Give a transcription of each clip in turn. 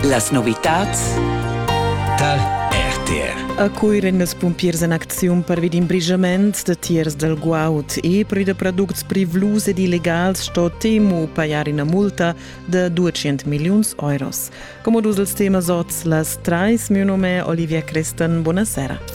Las novitads dal RTR. A Cuir èn ils pumpiers en acziun pervi d'in brigiament da tiers dal guaud e per da products privlus ed illegals sto Temu pajar ina multa da 200 milliuns euros. Come dus els temas oz las trais, mio nome è Olivia Crestan. Buonasera.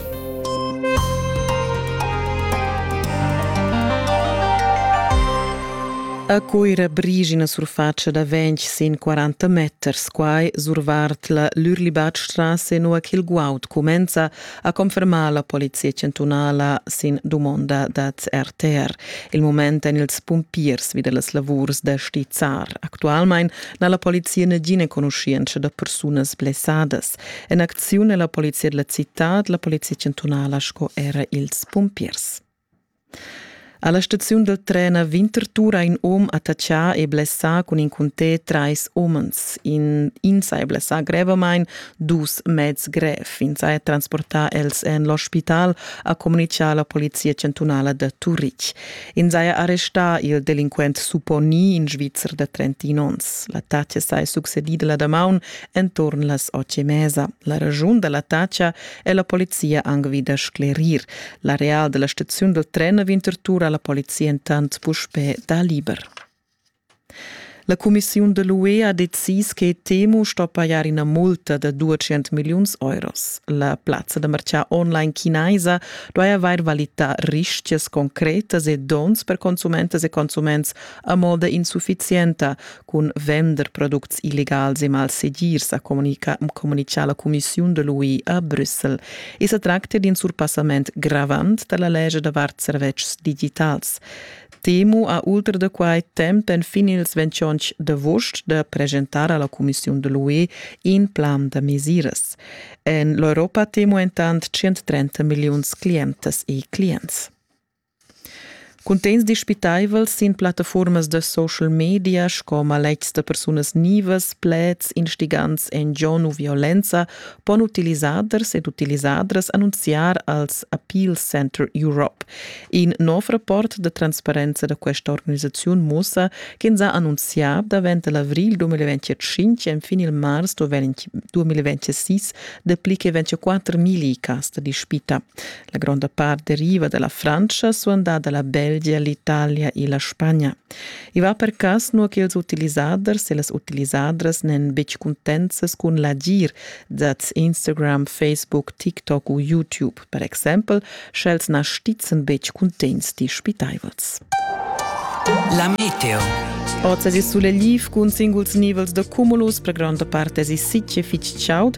A Cuira brigi ina surfatscha da ventg sin 40 meters. Quai survart la Lürlibatstrasse, nua ch'il guaud cumenza a confermar la polizia chantunala sin dumonda dad RTR. Il mument èn ils pumpiers vid las lavurs da stizzar. Actualmain n'ha la polizia nagina enconuschientscha da persunas blessadas. En acziun è la polizia della citad, la polizia chantunala sco era ils pumpiers. Alla staziun del tren a Winterthur ha in om attacchà e blessà cun in cuntè trais omens. In, ins ha blessà grevamain dus mezs grev. Ins ha transportà els en l'ospital, ha comunicà la polizia chantunala da Turitg. Ins ha arrestà il delinquent Suponi, in Svizzer da 31 onns. L'attacca è succedida la damaun Enturn las otg e mesa. La ragiun da l'attacca è la polizia anc vi da sclerir. L'areal da la staziun dal tren a Winterthur ha la polizia entant puspè dà liber. La cumissiun da l'UE ha decis che Temu sto pajar ina multa da 200 milliuns euros. La plazza da martgà online chinaisa duai avair valità rischias concretas e donns per consumentas e consuments a moda insuffizienta, cun vender products illegals e malsegirs, ha communichà la cumissiun de l'UI a Brüssel. I sa tracta d'un surpassament gravant da la legge davart servetschs digitals. Temu ha ultra da quai temp enfin ils 28 d'agost da presentar alla Commission de l'UE in plan da mesiras. En l'Europa temo entant 130 milliuns clientes e clients. Cuntegns dispitaivels sin plattafuormas da social media sco maletgs da persunas nivas, pleds instigants en gion u violenza pon utilisaders ed utilisadras annunziar als Appeal Center Europe. In nov rapport da transparenza da questa organisaziun mussa ch'ins ha annunzià davent l'avrigl 2025 enfin il mars 2026 dapli che 24.000 cas da dispita. La gronda part deriva dalla Francia suandà dalla Belgia, l'Italia e la Spagna. I va per cas nua che ils utilisaders e las utilisadras n'èn betg cuntenzas cun l'agir dad Instagram, Facebook, TikTok u YouTube, per exempel, sch'els na stizzan betg cuntegns dispitaivels. La meteo. Oz es il sulegl cun singuls nivels da cumulus, per gronda parte es il sitg e fitg chaud.